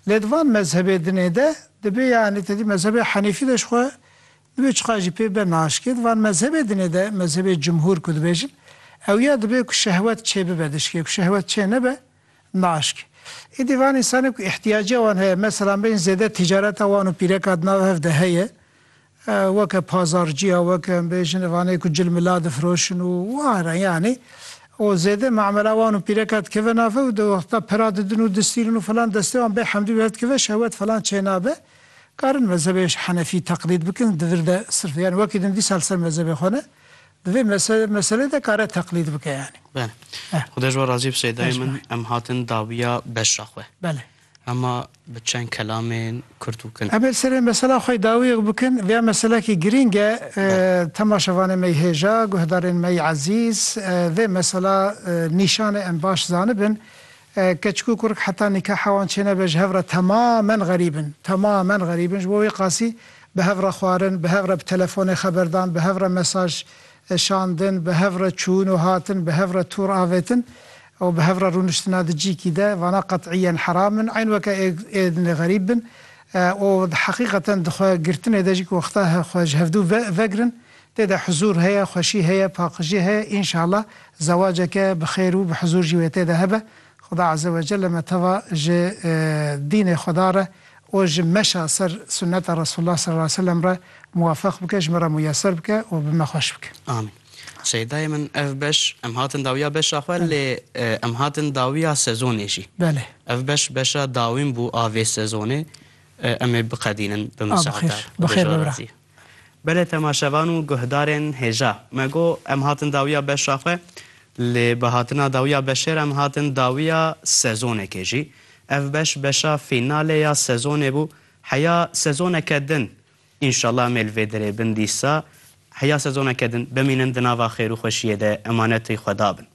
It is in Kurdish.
Lê di van mezhebê dinê de dibê yanî tedî mezhebê henîfî de ji xwe dibê çiqas jî pê be naşikê di van mezhebê dinê de mezhebê cumhûr ku dibêjin ew ya dibê ku şehwet çê bibe dişikê ku şehwet çê nebe naşikê. Îdî van însanê ku îhtîyaciya wan heye meselan bên zêde tîcareta wan û pîreka di nav hev de heye Weke pazarcîya weke em bêjin ev anê ku cil mila difiroşin û ware yanî û zêde mamela wan û pîreka dikeve nave û di wexta pira didin û distîrin û filan destê wan bê hemdî bi hev dikive şehwet filan çênabe. Karin mezhebê henefî teqlîd bikin di vir de sirf yanî wekî din dîsa li ser mezhebê xwe ne di vê meselê de kare teqlîd bike yanî. Bele. Xuda ji we razî bi Sêdayê min em hatin dawiya beşa xwe. Bele. Hema bi çend kelamên kurt û kin. Ebed serê mesela xwe dawiyek bikin, via meselekî girîng e, temaşevanê mey hêja, guhdarên mey ezîz, vê mesela nîşanê em baş zanibin, keçik û kurk heta nîkaha wan çênebe ji hev re temamen xerîb in, temamen xerîb in, ji bo wê qasî bi hev re xwarin, bi hev re bi telefonê xeberdan, bi hev re mesaj Eşandin, bi hev re çûn û hatin, bi hev re tûr avêtin û bi hev re rûniştina di cîkî de, vana qet'îyen heram in, eyn weke ê dinê xerîb bin û di heqîqeten di xwe girtinê de jî ku wexta xwe ji hevdû ve vegirin, tê de huzûr heye, xweşî heye, paqijî heye, înşallah zewaceke bi xêr û bi huzûr jî wê tê de hebe. Xuda Azewecelle me teva ji dînê Xuda re û ji meşa ser sunneta Resulullah sal aleyh ve sellem re muwafeq bike, ji me re muyeser bike û bi me xweş bike. Amîn. Şeydayê min ev beş em hatin dawiya beşa xwe lê em hatin dawiya sezonê jî. Belê. Ev beş beşa dawîn bû a vê sezonê. Em ê biqedînin bi misaada. Bi xêr. Bi xêr be bira. Belê temaşevan û guhdarên hêja. Me got, em hatin dawiya beşa xwe, lê bi hatina dawiya beşê re em hatin dawiya sezonekê jî. Ev beş, beşa fînalê ya sezonê bû. Heya sezoneke din, înşallah em ê li vê derê bin dîsa, heya sezoneke din, bimînin di nava xêr û xweşiyê de, emanetî Xweda bin.